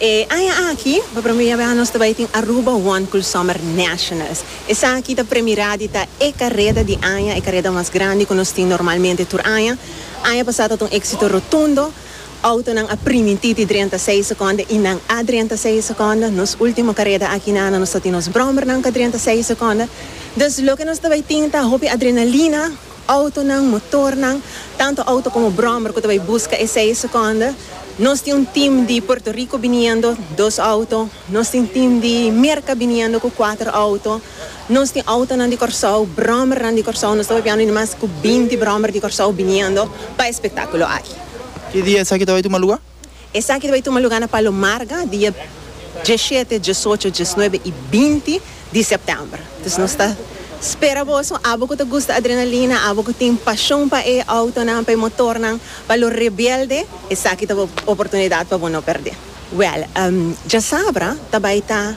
E aña aki, pa promé bes nos ta bai tin Aruba One Cool Summer Nationals. Esaki ta premirá di ta e kareda di aña, e kareda mas grandi ku nos tin normalmente tur aña. Aña pasá ta ta un éksito rotundo. Autonan a primintí di drenta seis sekondo i nan a drenta seis sekondo. Nos último kareda aki na ano nos ta tin nos bròmbernan ku a drenta seis sekondo. Dus loke nos ta bai tin ta hopi adrenalina. Autonan, motornan, tantu auto komo bròmber ku ta bai buska e seis sekondo. Nos tin un tim di Puerto Rico biniendo, dos auto. Nos tin tim di Merka biniendo ku kuater auto. Nos tin autonan di Kòrsou, bròmernan di Kòrsou, nos ta papiando di mas ku binti bròmer di Kòrsou biniendo pa e spektákulo aki. Ki dia esaki ta bai tuma lugá? Esaki ta bai tuma lugá na Palo Marga dia dieshete, diesocho, diesnuebe i binti di sèptèmber. Dus nos ta spera boso, abo ku ta gusta adrenalina, abo ku tin pashon pa e autonan, pa e motornan, pa lo rebelde, esaki ta oportunidat pa bo no pèrdè. Wèl, djasabra ta bai ta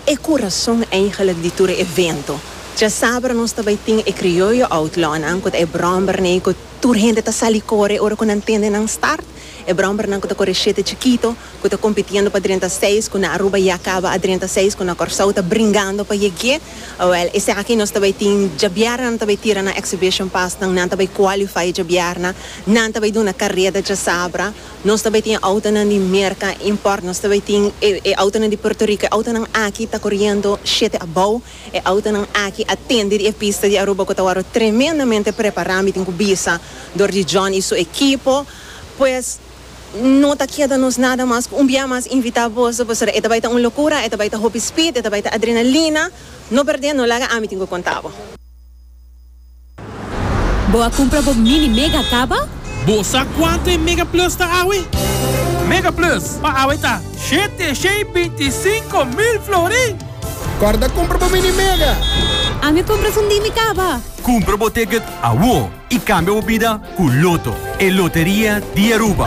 e kurason eigelijk di tur e evento. Djasabra nos ta bai tin e Krioyo Outlawnan ku ta e bròmbernan ku tur hende ta sali kore ora ku nan tende nan start. E bròmbernan ku ta kore shete chikito, ku ta kompitiendo pa drenta seis, ku na Aruba ya kaba a drenta seis, ku na Kòrsou ta bringando pa yeg'é. Wèl, esaki nos ta bai tin, djabièrna nan ta bai tira nan exhibition pasnan, nan ta bai kwalifai djabièrna, nan ta bai duna kareda djasabra. Nos ta bay tin autonan di Merca import, nos ta bay tin e e autonan di Puerto Rico, e autonan aki ta coriendo shete abou, e autonan aki a tende di e pista di Aruba cu ta wòrdu tremendamente prepara, mi tin cu bisa, dor di John y su ekipo, pues no ta keda nos nada mas cu un bia mas invita boso pasobra e ta bay ta un locura, e ta bay ta hopi speed, e ta bay ta adrenalina, no perde, no laga, ami tin cu conta bo. Bo a cumpra bo mini mega caba? Bo sa cuanto e mega plus ta awe? Mega plus pa awe ta shete shei binti sinco mil florin! Corda cumpra bo mini mega! Ami a cumpra sundí mi caba! Cumpra bo ticket awor y cambia bo bida cu Lotto, e loteria di Aruba!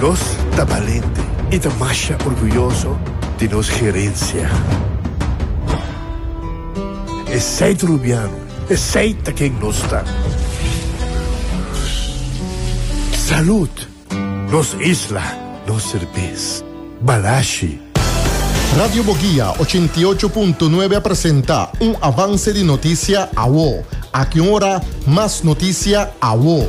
Nos ta balente i ta masha orguyoso di nos herensia. Esei ta Rubiano, esei ta ken nos ta. Salud! Nos isla, nos serbes. Balashi! Radio Boguia ochenta i ocho punto nuebe a presenta un avanse di notisia awo. Aki un ora mas notisia awo.